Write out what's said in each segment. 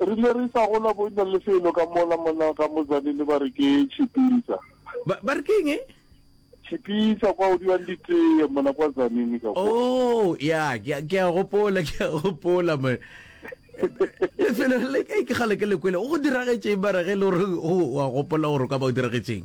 Re ile re sa gola bo ena le felo ka mola mona ga Mozane le ba re ke Tshipisa. Ba, ba re ke eng? Tshipisa kwa o diwang ditee mona kwa Zanini ka kwa. Oh, ya, ke a- ke a gopola, ke a gopola man. Lefelo le ke ke kgale ke le kwele. Go diragetšeng mara ge e le gore o a gopola gore o ka ba o diragetšeng?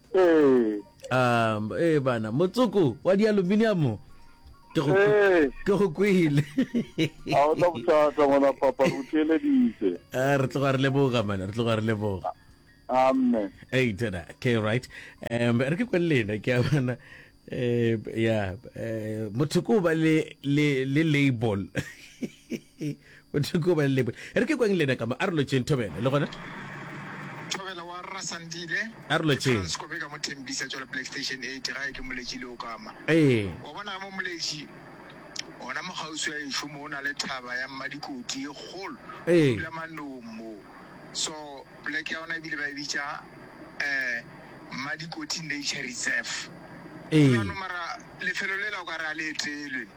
ee um ee bana motsoko wa dialuminiamo ke go ee ke go kwele a o tla bothata ngwana papa re o theeleditse Ah, re tloga re leboga mana re tloga re leboga amme Hey, tena, okay, right. Um, re ke kwele lena ke a bona eh ya eh motho ko ba le le le label E, Modimo ke go ba leboge. E re ke kweng le ena ka mo, a re lotšeng Thobela, le gona. Thobela wa Rra Sandile. A re lotšeng. Ke Frans Kobe ka mo Thembisa, tšwale Black Station 8, gae ke Moletši le Okama. Ee. Wa bona ga mo Moletši, gona mo kgauswi ga ešo mo, go na le thaba ya Mmadikoti e kgolo, Ee. go dula manong mo. So, poleke ya gona e bile ba e bitša um Mmadikoti Nature Reserve. Ee. Bjalo mara lefelo lela o ka re ga le etelwe.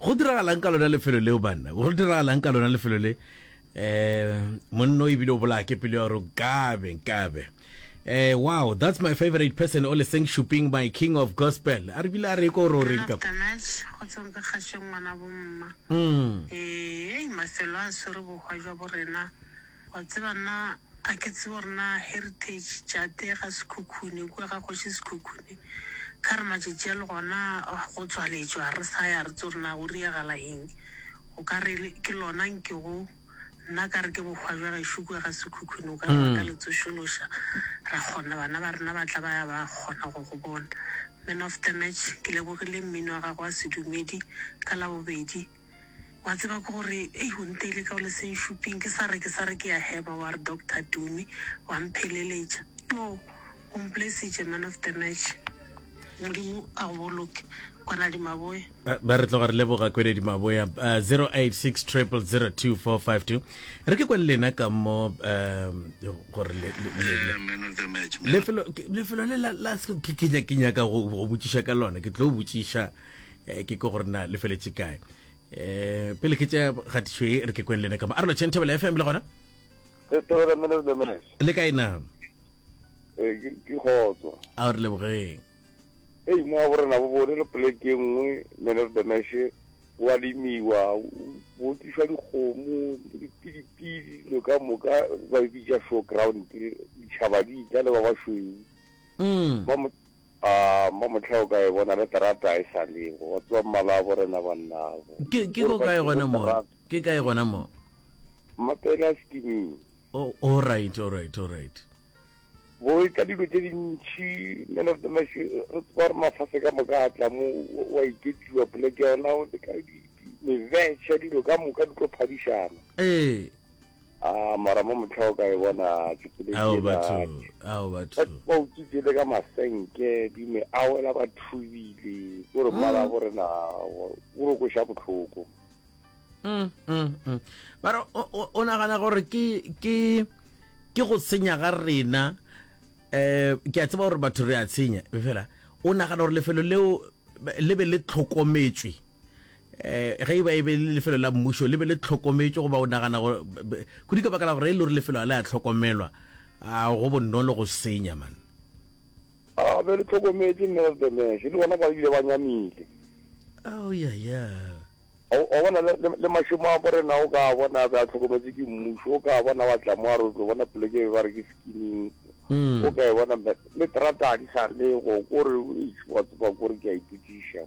Go diragalang ka lona lefelo leo, banna? Go diragalang ka lona lefelo le? Um, monna o ebile o bolaya ke pelo ya gore nkabe, nkabe. Eh, wow, that's my favorite person, o leseng shuping, my king of gospel. A re bile a re ko ro reng ka. Tanas, go tswang ka kgašeng ngwana bomma. Mm. Ee, mafelo a swere bohwa jwa borena. Wa tseba nna ga ke tsebe gore na heritage jate ga Sekhukhune kua ga kgoši Sekhukhune ka re matšatši a le gona go tswaletšwa ga re sa ya re tse gore na go riagala eng o ka re ke lona nkego nna ka re ke bohwa jwa gešo kua ga Sekhukhune o ka re ba ka le tsošološa ra kgona bana ba rena ba tla ba ya ba kgona go go bona. Man of the match ke lebogile mmino wa gago wa sedumedi ka labobedi. Wa tseba ke gore, ei, o nteile ka o le senšuping, ke sa re, ke sa re ke a heba, wa re, Doctor Tumi, wa mpheleletša. Yoo, o mpolaisitše, man of the match. Modimo a go boloke, Kwanadi Maboe. Ba, ba re tloga re leboga Kwanadi Maboe. Uh, 086 000 2452. Re ke kwa le lena ka mo, um, gore le, le, le, le. Man of the match. Lefelo, ke- lefelo le la, la, ke, ke, nya- ke nyaka go, go botšiša ka lona, ke tlo botšiša. eh, ke ko gore na le feletse kae um pele ke tša kgatišo e re ke kweng lene kama a relo chentebele fm le gona le kae na eh, ke kgotso a re lebogeng e mo wa borena bo bone le poleke e nngwe menesedeneshe wa lemiwa bo tliswa dikgomo dipidipidi lo ka moka ba bitsa show ground ditšhaba di itla le ba basweu mm. A mo mohla o ka e bona le terata e sa le go tswa mmala bo rena bannabo. Ke, ke ko kae gona mo? Ke kae gona mo? Mapele a sekiming. Oh, all right, all right, all right. Bo e ka dilo tse dintši, men of the mash, re tseba re mafase ka moka a tla mo, wa iketiwa poleke yona, o le ka di, di, mevetša, dilo ka moka di tlo phadišana. Ee. Ah, mara mo mohla o ka e bona tšhupeledi Ao ena. batho, ao batho. Batho ba utswitse le ka masenke, di me a wela ba thubile. Ke gore mmala wa bo rena o o re kweša bohloko. Mm, mm, mm. ba re o- o o nagana gore ke ke ke go senya ga rena um ke a tseba gore batho re a tshenya fela o nagana gore lefelo leo le be le tlhokometswe um ge e ba e be le lefelo la mmušo le be le tlhokometšwe goba o nagana kudu ka baka la gore e le gore lefelo ga le a tlhokomelwa a go bonolo go senya man a be le tlhokometše nevertheless le bona ba bile ba nyamile oh yeah yeah wa bona le mašemo a borena o ka bona be a tlhokometse ke mmušo o ka bona wa tla mo a re o tlo bona poleke e ba re ke skinning hmm. o ka e bona le terata a di sa le go kore wa tseba kore ke a iputiša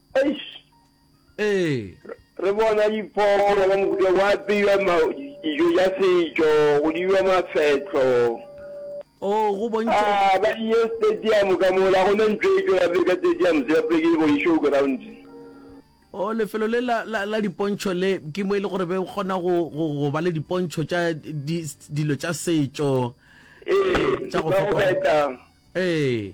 Eish. Ee. Re bona diphoofolo ka mohuta go apeiwa dijo tša setšo, go diwa mafetlo. O go bontšha. A ba di ye stadium ka mola go ne ntlo e tšwela pele ka stadium se bapile ke bo show ground. O lefelo le la la la dipontšho le ke mo e le gore be kgona go go ba le dipontšho tša dilo tša setšo. Ee, tša go feta. Ee.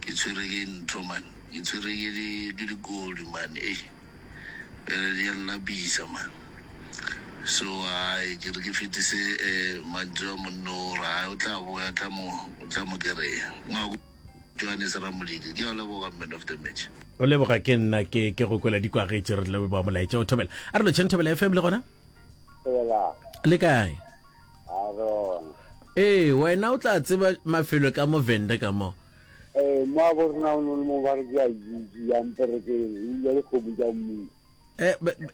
ke tshwere ke ntho man ke tshwere ke di ke dikoli man ei bjale di a nlapisa man so ai ke re ke fetise um mantšu a monno o re ai o tla boya tla mo o tla mo kereya ngwako johannes ramolidi ke a leboga man of the match o leboga ke nna ke ke go kwela dikwagetše re tlebe ba molaetša o thobela a re lotšheng thobela fm le gona Dumelang. le kae A bona. Ee, wena o tla tseba mafelo ka mo Venda ka mo. Ee, mo a borna o ne le mo ba re ke a jiji ya mperekeng, o ile le kgomo ja mmu. E,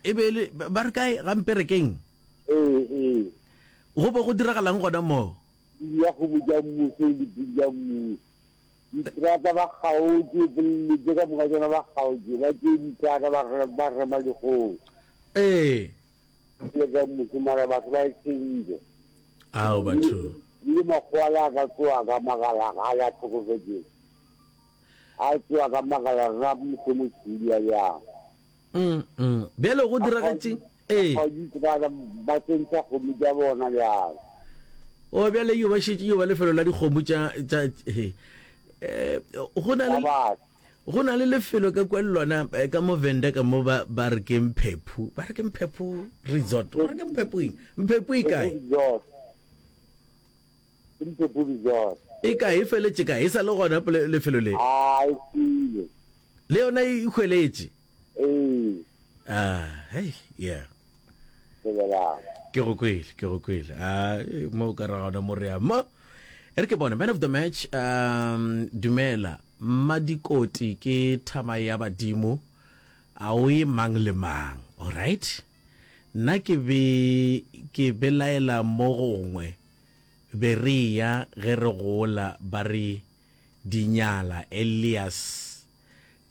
e be le ba re kae ga mperekeng? Ee, ee. Go bo go diragalang gona mo? Pudi ya kgomo ja mmu se le pudi ja mmu. Ditrata ba kgaotše, polelo tše ka moka tšona ba kgaotše, ba tše ditrata ba re ba rema dikgomo. Ee. Ke ka mmuso mara batho ba e change. Ao batho. Le makgowa la ka tsoa ka magala ga la tlhokofetse. A tsoa ka magala ra mmuso mo tshudi ya ya. Mm mm. Bjale go diragatšeng? Eh. Ga di tsana ba tsentsa go mo ja bona ya. O bjale yo ba šetše yo ba lefelo la dikgomo tša tša he. Eh go na le. Go na le lefelo ka kwa lona eh, ka mo venda ka mo ba ba re ke mphephu ba re ke mphephu resort ba re ke mphephu eng mphephu e kae e kae e feletse kae e sa le gona lefelo le le yona e hweletše Ee. Ah, hey, yeah. Lebelang. Ke go kwele, ke go kwele. Ah, eh, mo ka ra gona mo re ya. Mo e re ke bone man of the match um dumela madikoti ke thama ya badimo a o e mang le mang all right nna ke be ke belaela mo gongwe be re ya ge re gola ba re dinyala elias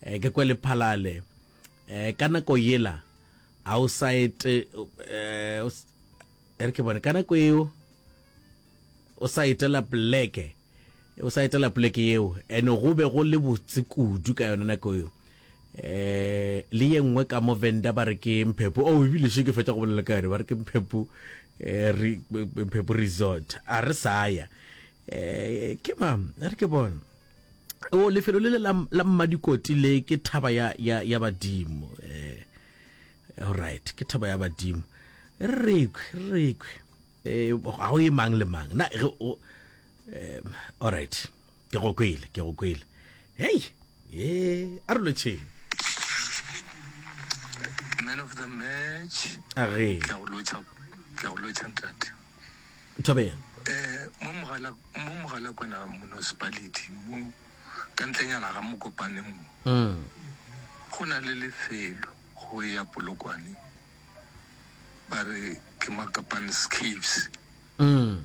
Eh, ke kwe lephalale eh, ka nako yela a o sa ete eh, o s- e re ke bone ka nako eo o sa etela pleke o sa etela pleke yeo ene go be go le botse kudu ka yone nako eo eh le ye nngwe ka mo venda ba re ke mphepo o ebile še ke fetsa go bolela ka yone ba re ke mphepo eh, re- mphepo resort a re saya eh ke mam a re ke bone o lefelo le le la, la mmadikoti le ke thaba ya, ya, ya badimo eh, alright ke thaba ya badimo re rekwe re rekwe eh, ga o ye mang le mang na ge o eh, alright ke go kwele ke go kwele hei e a re lotšheng man of the match a re Ke a go lotšha- ke a go lotšha ntate Nthobeya. Mo mogala mo mogala kwana municipality mo ka ntlenyana ga mokopane mo go na le lefelo go ya polokwane ba re ke makapan's caves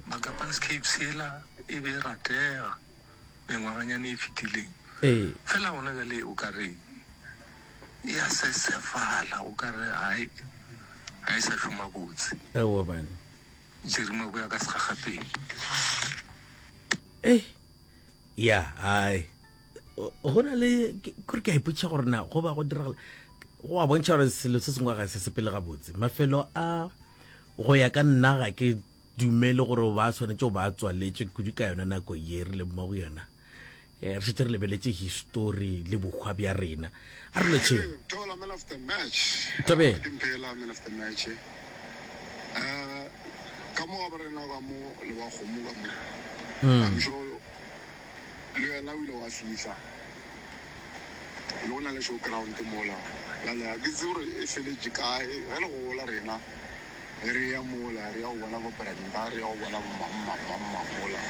makapan's caves ela e be ratega mengwaganyana e fetileng. Fela gona bjale o ka re e a sesefala, o ka re ga e, ga e sa šoma botse. Ewa bane. Jerry Maboya ka segagapele. Ei, ya, ai. Go na le, kore ke a ipotšiša gore na go ba go diragala, go a bontšha gore selo se sengwe ga se sepele gabotse. Mafelo a, go ya ka nna ga ke dumele gore ba swanetše go ba tswaletše kudu ka yona nako ye re leng mo go yona. Re šetše re lebeletše histori le bohwa bja rena. A re letšeng. le wena o ile wa fihla le go na le show ground mola bjale ga ke tsebe gore e feletše kae ge le gola rena ge re ya mola re ya go bona bo Brenda re ya go bona bomammammammang mola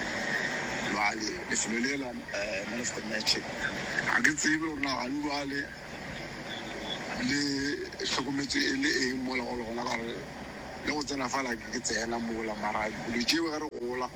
bjale lefelo le la um man of the match ga ke tsebe gore na gane bjale le hlokometse e le eng mola go le gona gare le go tsena fa lake ke tsena mola mara dilo tšeo ge re gola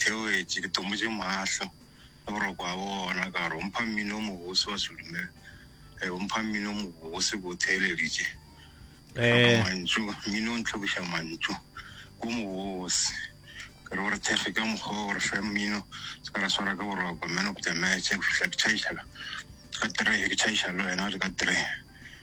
Ke wetše, ke tomotše mahlo ka boroko a bona, ka re, O mpha mmino o mobose wa selume, ee, o mpha mmino o mobose, ke o theeleditše. Ke hloka mantšu, mmino o ntlhokiša mantšu, o mobose. Ke re o re thekge ka mokgwa o, o re fe mmino, se ka ra swara ke boroko, man of the match, go fihla ke tšhaiša ka three, ke tšhaiša le wena o le ka three.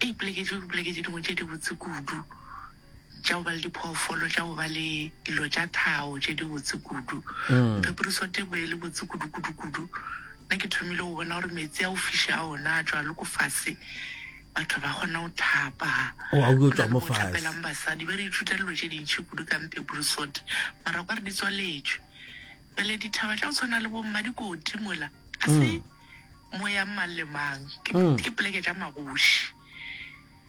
e ipoleketše go ipoleketše dingwe tše dibotse kudu tša go ba le diphoofolo tša go ba le dilo tša thao tše dibotse kudu pheporiso tebo e le botse kudu-kudu-kudu nna ke thomile go bona gore meetse a o fiše a ona a tšwa le ko fase batho ba kgona go thapa thapelang basadi ba re ithuta dilo tše dintšhi kudu ka mpeporisot mara kwa re di tswaletšwe pele dithaba tša go tshwana le bomma dikoti mola a se Mo yang mang le mang ke mm. ke poleke tša magoši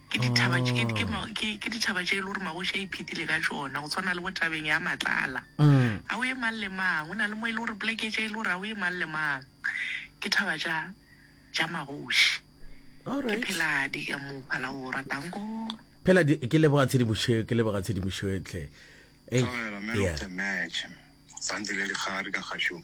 ke dithaba oh. ke ke ke ke dithaba tše e le gore magoši a iphethile ka tšona go tshwana le botabeng ya matlala mm. a o ye mang le mang o na le mo e le gore poleke tše e le gore a o ye mang le mang ke thaba tša tša magoši ke pheladi ka mo phala o ratang ko phela ke leboga tshedimošo ke leboga tshedimošo etlhe Hey, yeah. Santse le le gare ka gašong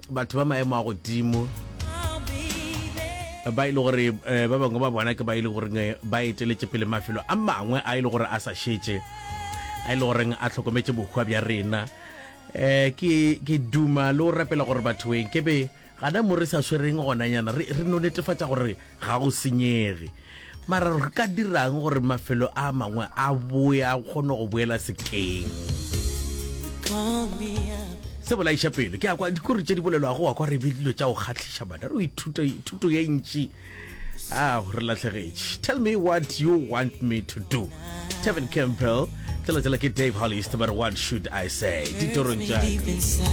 Batho ba maemo a godimo ba e le gore ba bangwe ba bona ke ba e le goreng ba eteletše pele mafelo a mangwe a e le gore a sa šetše a e le goreng a tlhokometše bohwa bja rena um ke duma le o rapela gore batho eng ke be gana mo re sa swereng gonanyana re no netefatša gore ga go senyege mara re ka dirang gore mafelo a mangwe a boe a kgone go boela sekeng se bolaiša pelo ke akwa dikore tše di bolelwago wa kwa re be dilo tša go kgatlhiša bana re ithuta thuto ye ntši a re latlhegetše tell me what you want me to do tevin campbell tšela tšela ke dave hollist ba re what should i say ditorong tša